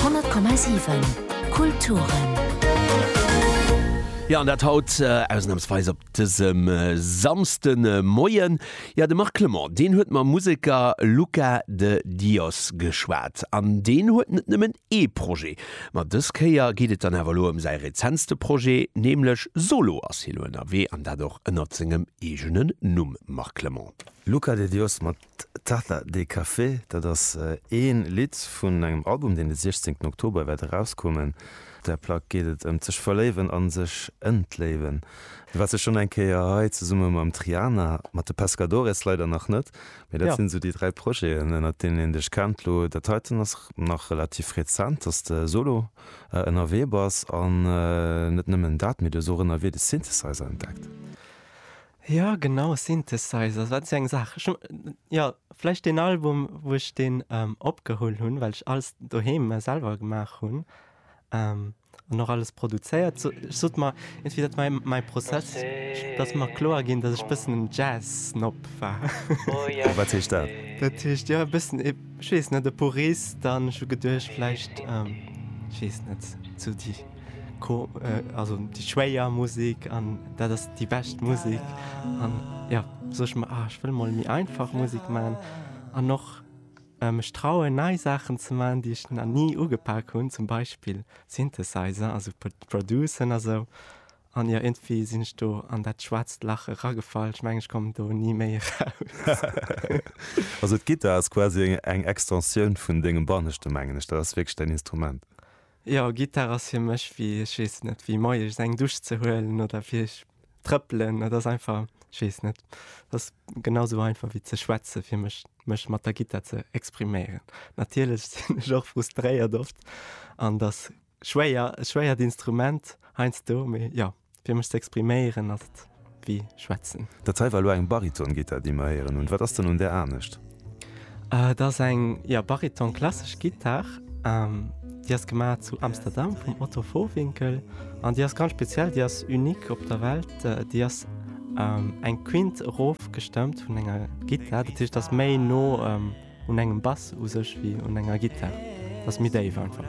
100,7 Kulturen. Jo an dat haut ausnamsweis op dësem Samsde Moien. Jo de Marc Clement deen huet mam Museker Luca de Dios geschwat an deen huet net nëmmen ee Projet. Ma dës Kéier geet et dann awer elo ëm säi rezentste Projet, nämlech Solo ass hie lo ënnerwee an dat och ënnert sengem eegenen Numm Marc Clement. Luca de Dios, mat Taza de Café, dat ass ee Lidd vun engem Album, deen de 16 Oktober wäert erauskommen. Op där Plack geet et ëm d'sech verléiwen a sech entléiwen. Du waars jo schonn eng Kéier hei zesumme mam Triana, mat de Pescadores leider nach net, mee dat sinn sou déi dräi Projeten, ënnert deenen een dech kennt. Lo dat heiten ass nach relativ rezent, dass de solo ënnerwee bass. An net nëmmen dat, mee du hues och ënnerwee de Synthesizer entdeckt. Jo genau, Synthesizer, wat eng Saach. Ech hunn jo vläicht deen Album, wou ech deen opgeholl hunn, well ech alles doheem selwer gemaach hunn an och alles produzéiert. Sou, ech sot mer iergendwéi, dat war mäi Prozess, datt ass mer kloer ginn, datt ech e bëssen en Jazz-Snob war. A wat heescht dat? Dat heescht, jo e bëssen e, ech weess net, e Purist an ech hu geduecht vläicht, ech weess net, sou déi. Déi schwéier Musik an dat ass déi bescht Musik. An jo sot ech mer, ech wëll mol méi einfach Musik man an och mech trauen nei Saachen ze man, déi ech na ni ugepak hunn, zum Beispill Synthesizer, also Producen a sou. An jo iergendwéi sinn ech do an dat schwaarzt Lach eragefall. Ech mengen ech kommen do ni méi eraus. Also d'Gittar ass quasi eng Extensioun vun dengem Banneschte mengen ech. Dat ass wierklech däin Instrument. Jo, Gittar ass fir mech wéi, ech weess net, wéi moies eng Dusch ze huelen oder fir ech trëppelen. Dat ass einfach, ech weess net, dat ass genau sou einfach wéi ze schwätze fir mech, mech mat der Gittar ze expriméieren. Natierlech sinn ech och frustréiert oft an et ass schwéier, e schwéiert Instrument heiansdo, mee jo. Fir mech ze expriméieren ass et wéi schwätzen. Dat hei war elo eng Baritongitter, déi mer héieren hunn. Wat ass dann un där anescht? Et ass eng, jo, Bariton klassesch Gittar. Déi ass gemaach zu Amsterdam vum Otto Vohwinkel an déi ass ganz speziell, déi ass unique op der Welt. Déi ass eng Quinte erof gestëmmt vun enger Gittar, dat heescht ass méi no un engem Bass u sech wéi un enger Gittar, ass méi déif einfach.